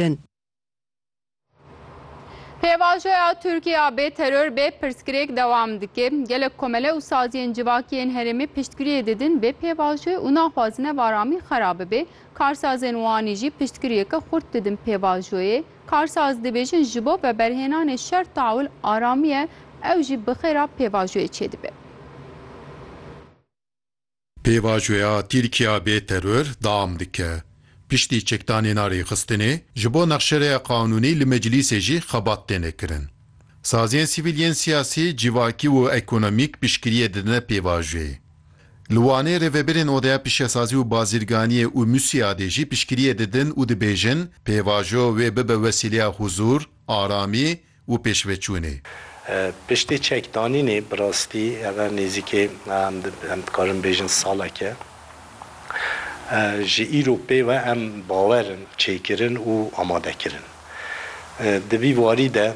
kirin. Pêvajoya Tirkiya bê teror bê pirsgirêk dewam dike. Gelek komele û saziyên civakî yên herêmê piştgiriyê didin bê pêvajoyê û naxwazine varamî xera bibe. Karsazên Wanî jî piştgiriyeke xurt didin pêvajoyê. Karsaz dibêjin ji bo veberhênanê şer tawil aramiye ew jî bi xêra pêvajoyê çêdibe. Pêvajoya Tirkiya bê teror deam dike. Piştî çekdanêna rêxistinê, ji bo nexşereya qanûnî li meclîsê jî xebat têne kirin. Saziyên sivîl yên siyasî, civakî û ekonomîk piştgiriyê didine pêvajoyê. Li Wanê rêvebirên Odeya Pişesazî û Bazirganiyê û Musîadê jî piştgiriyê didin û dibêjin pêvajo wê bibe wesîleya huzûr, aramî û pêşveçûnê. Piştî çekdanînê bi rastî ev e nêzîkê em dikarin bêjin salek e ji îro pê ve em bawer in, çêkirin û amade kirin. Di vî warî de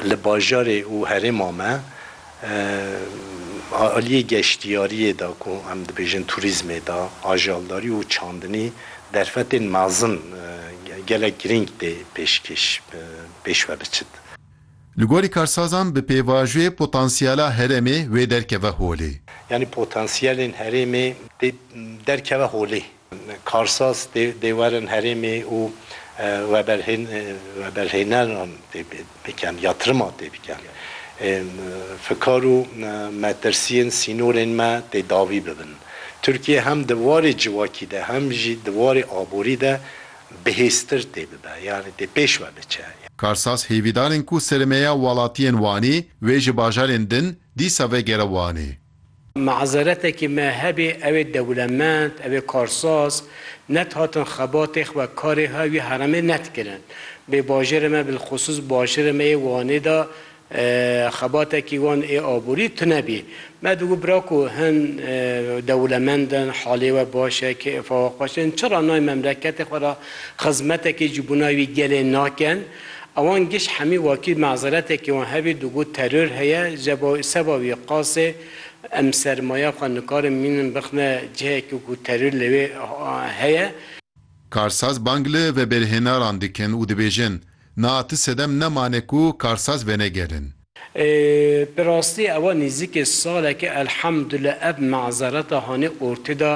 li bajarê û herêma me, Aliyê geştiyariyê de ku em dibêjin turîzmê de ajaldarî û çandinî derfetên mezin gelek girîng tê pêşkêş pêş ve biçit. Li gorî karsazan bi pêvajoyê potansiyela herêmê wê derkeve holê. Yanî potansiyelên herêmê tê derkeve holê. Karsaz dê werin herêmê û veberhêneran tê bikin, yatrima tê bikin. Fikar û metirsiyên sînorên me tê dawî bibin. Tirkiye hem di warê civakî de hem jî di warê aborî de bihêztir tê bibe, yanî tê pêş ve biçe. Karsaz hêvîdar in ku sirmeya welatiyên Wanê wê ji bajarên din dîsa vegere Wanê. Mazeretekî me hebê ew ê dewlemend, ew ê karsaz, net hatin xebatê xwe, karê xwe wî heremê net kirin. Bê bajêrê me bilxusûs başêrê me yê Wanê de xebatekî wan ê aborî tune bî. Me digot bira ku hin dewlemend in, halê we baş e, kêfa we xweş e, hin çira nayên memleketê xwe re xizmetekê ji bona wî gelê nakin? Awan giş hemî wakî mazeretekê wan hebî digot teror heye jeba seba wî qasê em sermaya xwe nikarin mînin bixne cihekî ku teror li wê heye. Karsaz bang li vebêrhênaran dikin û dibêjin, Na ti sedem nemane ku karsaz venegerin. Bi rastî ewa nîzîkê saleke elhemdullah ev mazereta hanê ortê de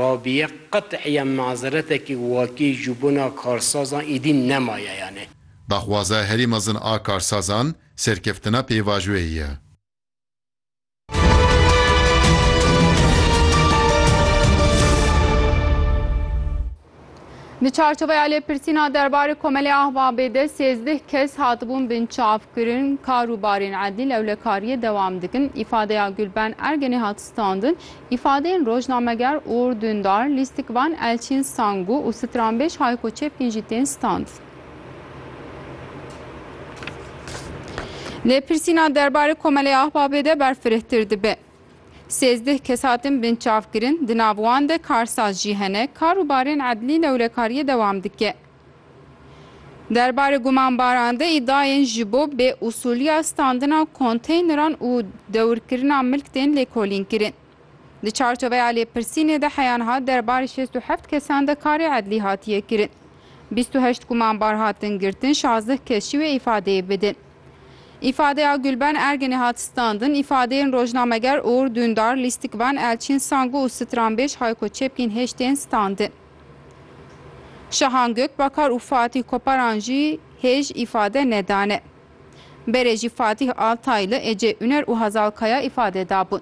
Rabîye qet'îyan mazeretekî wakî ji bona karsazan îdî nemaye yanê. Daxwaza herî mezin a karsazan serkeftina pêvajoyê ye. Di çarçoveya lêpirsîna derbarê Komelê Ahbabê de sêzdeh kes hatibûn binçavkirin, kar û barên edlî lewlekariyê dewam dikin. Îfadeya Gulben Ergenê hat standin. Îfadeyên rojnameger Uğur Dündar, Lîstikvan Elçîn Sangu û stranbêj Hayko Çepkîn jî tên standin. Lê pirsîna derbarê Komeleyê Ahbabê de berfirehtir dibe. Sêzdeh kes hatin binçavkirin, di nav wan de karsaz jî hene, kar û barên edlî lewlekariyê dewam dike. Derbarê gumanbaran de îdayên ji bo bêusûliya standina konteyneran û dewirkirina milk tên lêkolînkirin. Di çarçoveya lêpirsînê de heyan hat derbarê şêst û heft kesan de karê edlî hatiye kirin. Bîst û heşt gumanbar hatin girtin, şazdeh kes jî wê îfadeyê bidin. Îfadeya Gulben Erginê hat standin, îfadeyên rojnameger Uğur Dündar, Lîstikvan, Elçin Sangu û stranbêj Hayko Çepkin hêj tên standin. Şahan Gökbakar û Fatih Koparan jî hêj îfade nedane. Berê jî Fatih Altaylı, Ece Üner û Hazal Kaya îfade dabûn.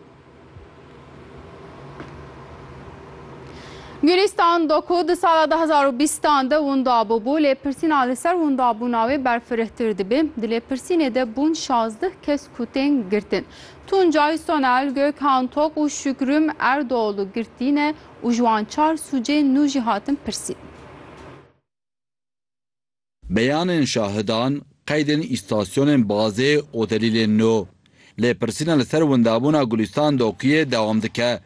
Gulîstan do ku di sala du hezar û bîstan de winda bûbû, lêpirsîna li ser windabûna wê berfirehtir dibê. Di lêpirsînê de bûn şazdeh kes ku tên girtin. Tuncay Sonel, Gökhan Tok û Şükrüm Erdoğlu girtîne û ji wan çar sûcên nû jî hatin pirsîn. Beyanên şahidan, qeydên îstasyonên bazê û delîlên nû. Lêpirsîna li ser windabûna Gulîstan Dokuyê dewam dike.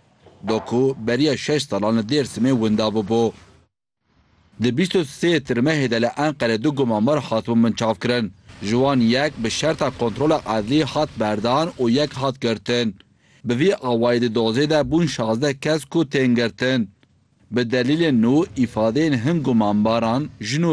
Doku beriya şeş salan li Dêrsimê winda bûbû. Di bîst û sê Tirmehê de li Enqerê du gumanbar hatibûn binçavkirin. Ji wan yek bi şerta kontrola edlî hat berdan û yek hat girtin. Bi vî awayî di dozê de bûn şazdeh kes ku tên girtin. Bi delîlên nû îfadeyên hin gumanbaran jin û